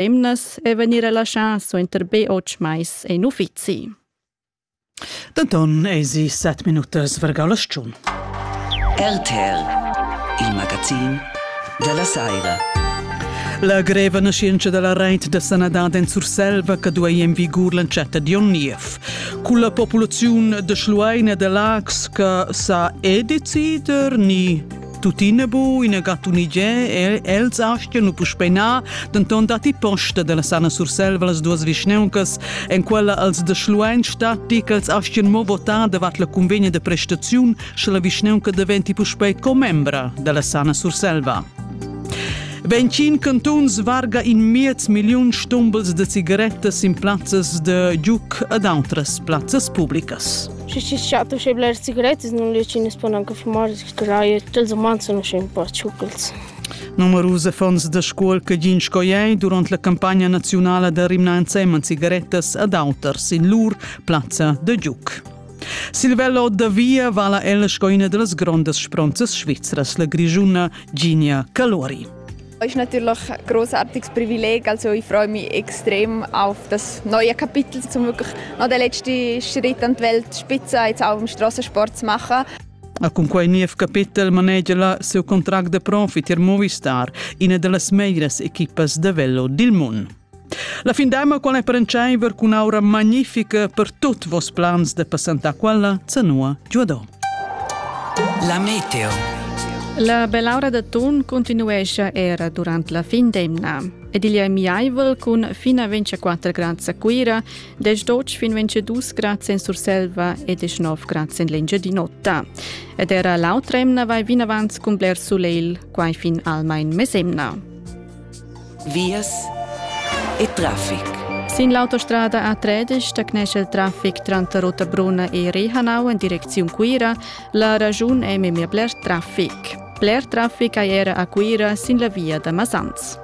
emnas e vegnir relaschà suenter be otg mais en uffizi. Denton eisi set minutas vergau la stun. RTL, il magazin della Saira. La greva nascenza della reit da sanadad en Surselva che duei en vigur l'entschatta di onn niev. Con la popolazione de Schluein e de Lax che sa è decider ni Tuttina bu ina gattunigé el els astga nu puspeinar, denton datti posta della Sana Surselva las duas vischneuncas, en quella als de Schluein statti ch'els astgien mo votar davart la convegna de prestaziun, sche la vischneunca diventi puspei commembra della Sana Surselva. Ventschin cantuns varga in miez milliun stumbels de cigarettas in plazzas de giuc ad outras plazzas publicas. Și și și atunci bler cigaretes nu le cine spuneam că fumoris Straia tals umans sun usche ün po tschucals. Numerus affons da scuol che gin sco ei durant la campagna naziunala da rimnar ensemen cigarettas ad auters in lur plazza da giuc. Silvello da via vala el sco ina delles grondas spronzas svizras, la grigiuna Ginia Calori. Es natürlich ein großartiges Privileg, also ich freue mich extrem auf das neue Kapitel, um wirklich noch den letzten Schritt an die Welt Spitze jetzt auch im Strassensport zu machen. Ma cunquai niev capetel manegia la siu contract de profi tier Movistar, ina dallas meglieras equipas de velo dil mund. La fin d'emma qual è per enceiver cun aura magnifica per tutti vos plans de passantà quella, zanua giuadò. La meteo. La bell'aura da Thun continuescia era durante la fin d'emna ed igl è miaivel cun fino a 24 grad a Cuira Desch doc fin 22 grad en Surselva e 19 grad en l'Engiadin'Ota. Ed era l'autremna vai vinavant cun bler sulegl, quai fin almain mesemna. Vias e traffic. Sin l'autostrada A13 da cnesce il traffic tranter Rotabruna e Rehanau en direcziun Cuira, la ragiun è memia bler traffic. Bler traffic hai era a Cuira sin la via da Masans.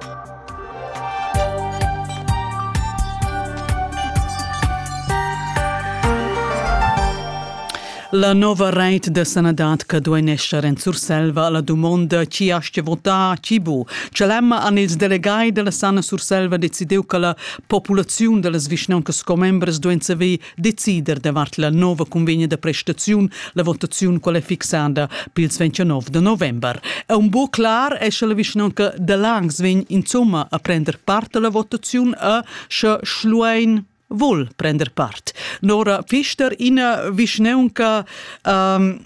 La nova reit da sanadad che duein esser en Surselva alla dumonda chi astga votar chi bu. Celemma han ils delegai dalla Sana Surselva decidiu che la populaziun dallas vischnauncas commembres duein saver decider davart la nova convegna da prestaziun. La votaziun qual è fixada pils 29 de november. E un bo clar è sche la vischnanca da Langs vegn insomma a prender part alla votaziun a sche Schluein vul prender part. Nora Fister, ina vischnanca um,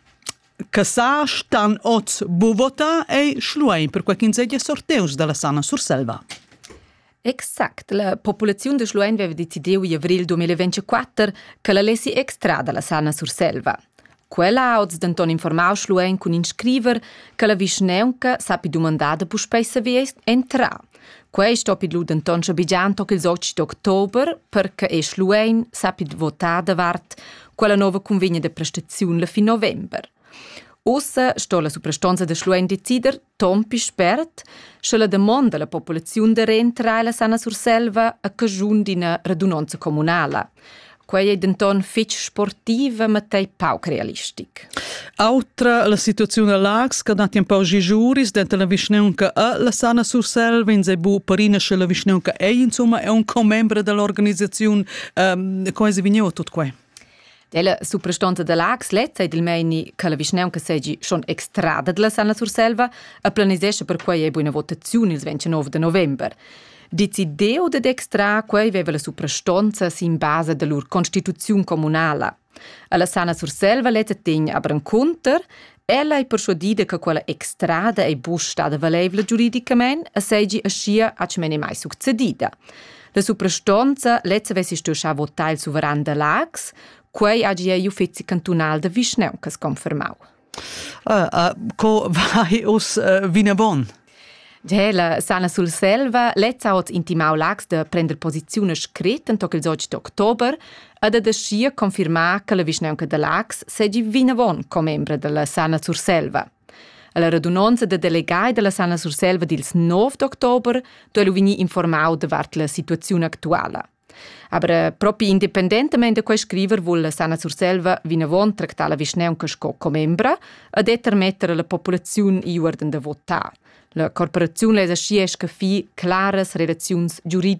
che sa stan oz bu vota ei schluein per quei ch'ins ei sorteus dalla Sana Surselva. Exact. La populaziun de Schluein veva decidiu in avril 2024 che la lessi extrar dalla Sana Surselva. Quella ha oz denton informau Schluein cun in scriver che la vischneunca sappi dumandar da puspei saver entrar. Quei stoppi lu denton schabegiar toc ils 8 d'october perche e Schluein sappi votar davart quella nova convegna de prestaziun la fin november. Ossa sto la suprastonza de Schluein decider Tompi spert, sche la damonda alla populaziun da reentrar la sana Surselva a caschun d'ina radunonza communala. Quei ei denton fetg sportiva, ma tei pauc realistic. Autra la situaziun a Lax, che dat un pau gigiuris dentro la vischneunca a la sana Surselva, in sei bu parina sche la vischneunca ei insomma è un commembre dell'organizzazione. Um, come si vigneva tutto qua? Ella suprastonta da Lax letta ed il meini che la vischnaunca segi schon extrada della Sanna Surselva e planisescha per quei ei buina votaziun ils 29 de november. Decidiu dad extrar quei veva la suprastonza sin basa da lur constituziun communala. Alla Sanna Surselva letta tegn aber conter Ella ei perschuadida che quella extrada ei buc stada valeivla giuridicamein e seigi aschia atschmen e mai succedida. La suprastonza lezza vessi stuiu schar votar il suveran da Laax, quei hagi igl uffizi cantunal da vischnauncas confermau. Uh, uh, co vai uss uh, vinavon? Gela sana Surselva lezza ot intimau Lax da prender posiziun scrit en toc ils 8 d'october e da deschia confirmar che la vischnaunca da Lax segi vinavon commembra della Sana Surselva. Alla radunonza da delegai della Sana Surselva dils 9 d'october duei lu vegnir informau davart la situaziun actuala. Aber propi independentamain da quei scriver vul Sana Surselva vinavon tractar la vischnaunca sco commembra e determetter la populaziun iuorden da votar. La corporaziun lesa schi esca fi claras relaziuns giuridic